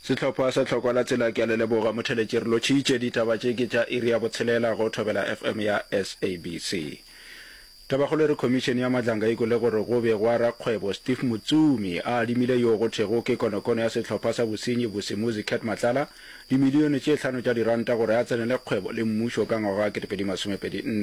Sehlopha sa Tlhokwa la Tsela ke a le leboga motheletši re lotšhitše ditaba tše ke tša iri ya botshelela go Thobela FM ya SABC Tabakgolo e re Khomišene ya Madlanga e kwele gore go be gwa rakgwebo Steve Mutsumi a adimile yo go thwego ke konokono ya sehlopha sa bosenyi Bosimuzi Cat Matlala dimilione tše hlano tša diranta gore a tsenele kgwebo le mmušo ka ngwaga wa 2024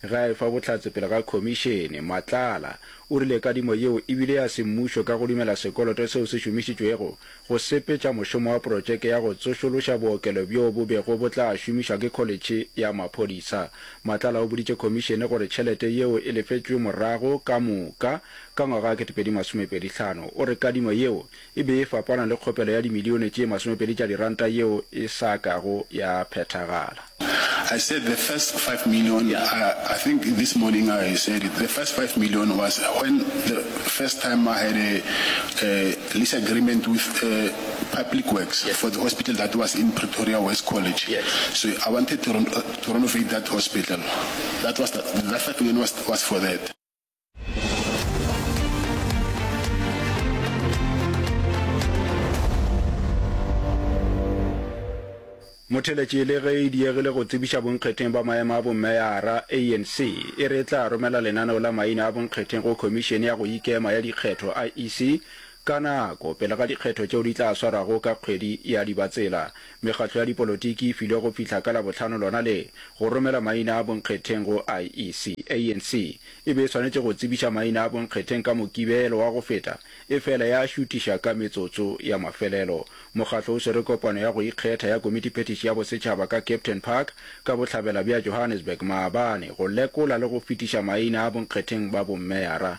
ge a e fa bohlatse pele ga Khomišene Matlala O rile kadimo yeo e bile ya semmušo ka go dumela sekoloto seo se šomišitšwego go sepetša mošomo wa protšeke ya go tsošološa bookelo bjoo bo bego bo tla šomišwa ke Kholetšhe ya Maphodisa. Matlala o boditše Khomišene gore tšhelete yeo e lefetšwe morago ka moka ka ngwaga wa 2025. O re kadimo yeo e be e fapana le kgopelo ya dimilione tše masomepedi tša diranta yeo e sa kago ya phethagala. I said the first five million, I think this morning I said it, the first five million was when the first time I had a lease agreement with Public Works for the hospital that was in Pretoria West College, so I wanted to renovate that hospital, that was the first million was for that. motheletše le ge e diegile go tsebiša bonkgetheng ba maemo a bommeyara anc e re e tla romela lenaneo la maina a bonkgetheng go khomišene ya go ikema ya dikgetho iec Ka nako pele ga dikgetho tšeo di tla swarago ka kgwedi ya Dibatsela, mekgatlo ya dipolotiki e filwe go fihla ka Labohlano lona le, go romela maina a bonkgetheng go IEC. ANC e be e swanetše go tsebiša maina a bonkgetheng ka Mokibelo wa go feta, efela ya a šutiša ka metsotso ya mafelelo. Mokgatlo o swere kopano ya go ikgetha ya Komitiphethiši ya Bosetšhaba ka Captain Park ka bohlabela bja Johannesburg maabane go lekola le go fetiša maina a bonkgetheng ba bommeara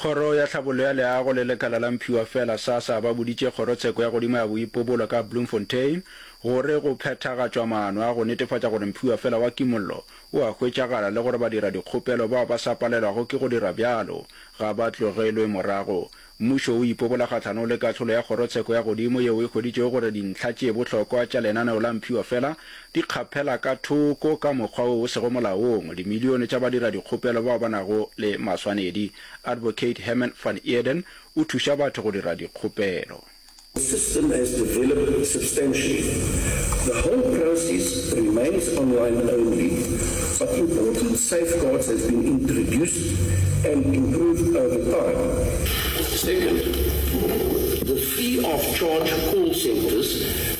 Kgoro ya Tlhabollo ya Leago le lekala la Mphiwafela, SASSA, ba boditše Kgorotsheko ya Godimo ya Boipobolo ka Bloemfontein gore go phethagatšwa maano a go netefatša gore Mphiwafela wa Kimollo o a hwetšagala le gore badiradikgopelo bao ba sa palelwago ke go dira bjalo ga ba tlogelwe morago. Mmušo o ipobola kgahlanong le kahlolo ya Kgorotsheko ya Godimo yeo e hweditšego gore dintlha tše bohlokwa tša lenaneo la Mphiwafela di kgaphela ka thoko ka mokgwa wo o sego molaong dimilione tša badiradikgopelo bao ba nago le maswanedi. Advocate Herman van Eeden o thuša batho go dira dikgopelo. The system has developed substantially. The whole process remains online only, but important safeguards have been introduced and improved over time. Second, the free of charge call centres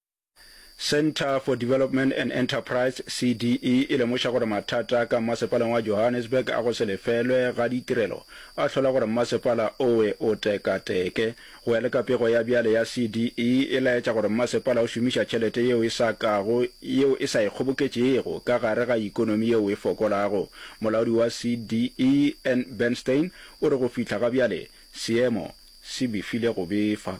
Centre for Development and Enterprise, CDE, e lemoša gore mathata ka mmasepaleng wa Johannesburg a go se lefelwe ga ditirelo a hlola gore mmasepala owe o tekateke. Go ya le ka pego ya bjale ya CDE, e laetša gore mmasepala o šomiša tšhelete yeo e sa kago yeo e sa e kgoboketšego ka gare ga ikonomi yeo e fokolago. Molaodi wa CDE, Ann Bernstein, o re go fihla ga bjale seemo se befile go befa.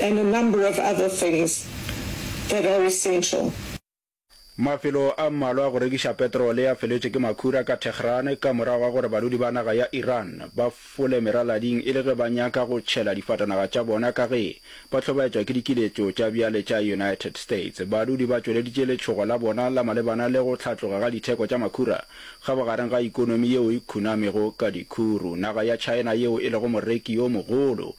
and a number of other things that are essential. Mafelo a mmalwa a go rekiša petrole a feletšwe ke makhura ka Tehran ka morago ga gore balodi ba naga ya Iran ba fole meralading e le ge ba nyaka go tšhela difatanaga tša bona ka ge ba hlobaetšwa ke dikiletšo tša bjale tša United States. Balodi ba tšweleditše letšhogo la bona la malebana le go hlatloga ga ditheko tša makhura kgabogareng ga ikonomi yeo e khunamego ka dikhuru. Naga ya China yeo e lego moreki yo mogolo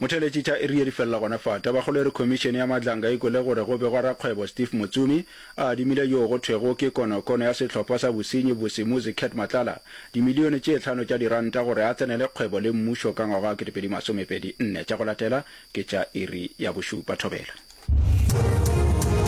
Motheeletši tša iri ye di felela gona fa. Tabakgolo e re Khomišene ya Madlanga e kwele gore go begwa rakgwebo Steve Motsumi a adimile yoo go thwego ke konokono ya sehlopha sa bosenyi Vusi Muzi Cat Matlala dimilione tše hlano tša diranta gore a tsenele kgwebo le mmušo ka ngwaga wa 2024. Tša go latela ke tša iri ya bošupa. Thobela.